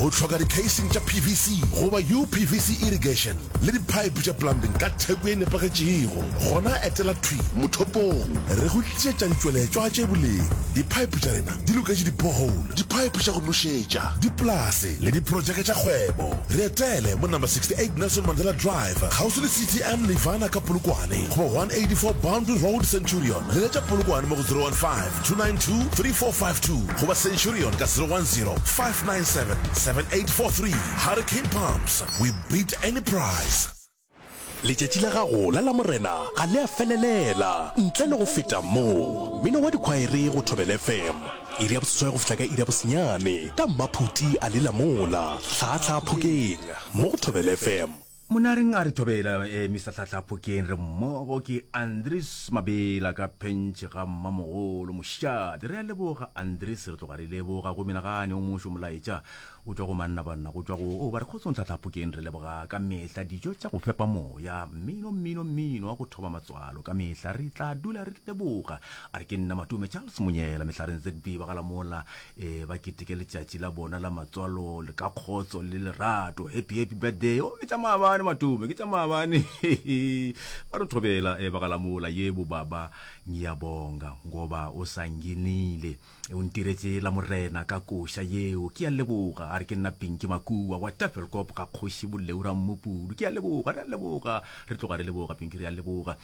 O hloka dikheising tša PVC goba UPVC irrigation le diphaephe tša plumbing ka theko e nepagetšego? Gona etela thwi mothopong re go tlišetša ditšweletšwa tše boleng. Diphaephe tša rena di loketše di-borehole, diphaephe tša go nošetša, dipolase le diprotšeke tša kgwebo. Re etele mo Number 68 Nelson Mandela Drive, kgauswi le CTM Nirvana ka Polokwane, goba 184 Boundary Road, Centurion. Leletša Polokwane mo go 015 292 3452 goba centurion ka 010 597 7843 hurricane pumps we beat any price Letšatši la gago la Lamorena ga le a felelela ntle le go feta mo. Mmino wa dikhwaere go Thobela FM. Iri ya boseswai go fihla ka iri ya bosenyane ka mmaphuti a lela mola hlaahlaa phokeng mo go Thobela FM. Monareng a re thobela eh, Mister Tlhahla Phokeng re mmogo ke Andries Mabela ka phentšhe ga mmamogolo mošate. Re a leboga Andries re tloga re leboga go menagane o mošo molaetša o tšwa go manna banna go tšwa go o ba re kgotsong Tlhahla Phokeng re leboga ka mehla dijo tša go fepa moya mmino mmino mmino wa go thoba matswalo ka mehla re tla dula re leboga a re ke nna Matume Charles Monyela Mehlareng ZB ba galamola e ba keteke letšatši la bona la matswalo le ka kgotso le lerato happy happy birthday o ke tša maabane matome ke tša maabane ba re thobela e ba galamola yebo baba ngiyabonga ngoba o sa nginile e o ntiretse la morena ka koša yeo ke ya leboga a re ke nna pinki makua wa tafelkop ga kgoši boleura mmopudu ke ya leboga re a leboga re tloga re leboga pinki re a leboga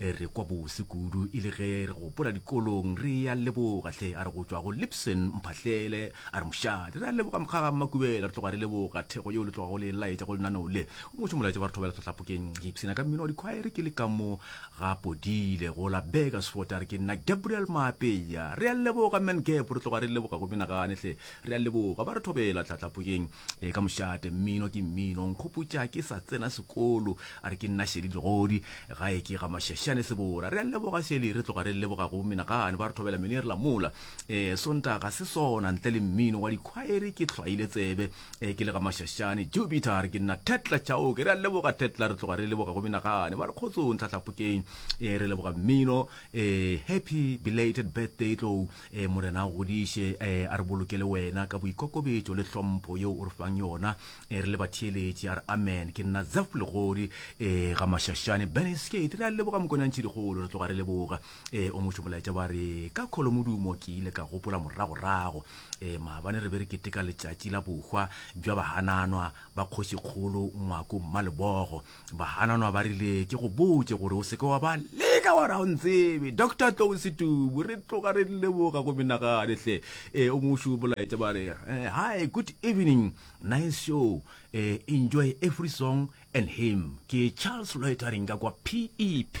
E re kwa bose kudu e le ge re gopola dikolong re ya leboga hle a re go tšwa go Lipson Mphahlele a re mošate re a leboga Mokgaga Mmakubela re tloga re leboga thekgo yeo le tloga go le laetša go lenaneo le go ngwetše molaetša ba re thobela tlhohlapokeng ke ipshina ka mmino wa dikhwaere ke le ka mo ga Podile go la Burgersfort a re ke nna Gabriel Maapeya re a leboga man Gab re tloga re leboga go menagane hle Re a leboga ba re thobela tlatlapoyeng e ka mošate. Mmino ke mmino. Nkgopotša ke sa tsena sekolo. A re ke nna Shelly Legodi. Gae ke ga Mashashane Sebora. Re a leboga Shelly. Re tloga re leboga go menagane ba re thobela mene re la mola. Ee Sonta ga se sona ntle le mmino wa dikhwaere ke hlwaile tsebe ee ke le ga Mashashane Jupiter. A re ke nna Tetla Chauke. Re a leboga Tetla. Re tloga re leboga go menagane ba re kgotsong tlatlapokeng ee re leboga mmino ee happy belated birthday tlou. Ee, Morena a godiše, ee, a re bolokele Wena ka boikokobetšo le hlompho yeo O re fang yona, ee, re le batheeletši. A re, Amen. Ke nna Zeph Legodi, ee, Gamašašane, Burnasgate. Re a leboga, Mokonantšhedikgolo, re tloga re leboga. Ee, o mošo molaetša wa re, Ka kholomodumo ke ile ka gopola moragorago, ee, maabane re be re keteka letšatši la bohwa bja bahananwa ba Kgošikgolo Ngwako Mmalebogo. Bahananwa ba rile ke go botše gore o seke wa ba leka wa ra o ntsebe doctor tlou setubu re tloga re leboga go menagane hle e o mošu bolaetša ba re eh, hi good evening nice show eh, enjoy every song and him ke charles loitering ka kwa pep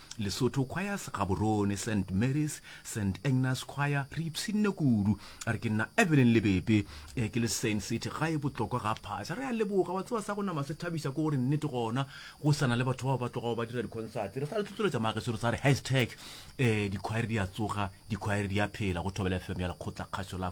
Lesotho Choirs, Gaborone, Saint Mary's, Saint Agnes Choir, re ipshinne kudu. A re ke nna Evelyn Lebepe, eh, ke le Saint City, gae botlokwa ga phaša. Re a leboga, wa tseba sa go nama se thabiša ke gore nnete gona go sa na le batho bao ba tlogago ba dira dikhonsate. Re sa le tlotloletša magesero sa re hashtag, eh, dikhwaere di a tsoga, dikhwaere di a phela, go Thobela FM ya Lekgotlakgašo la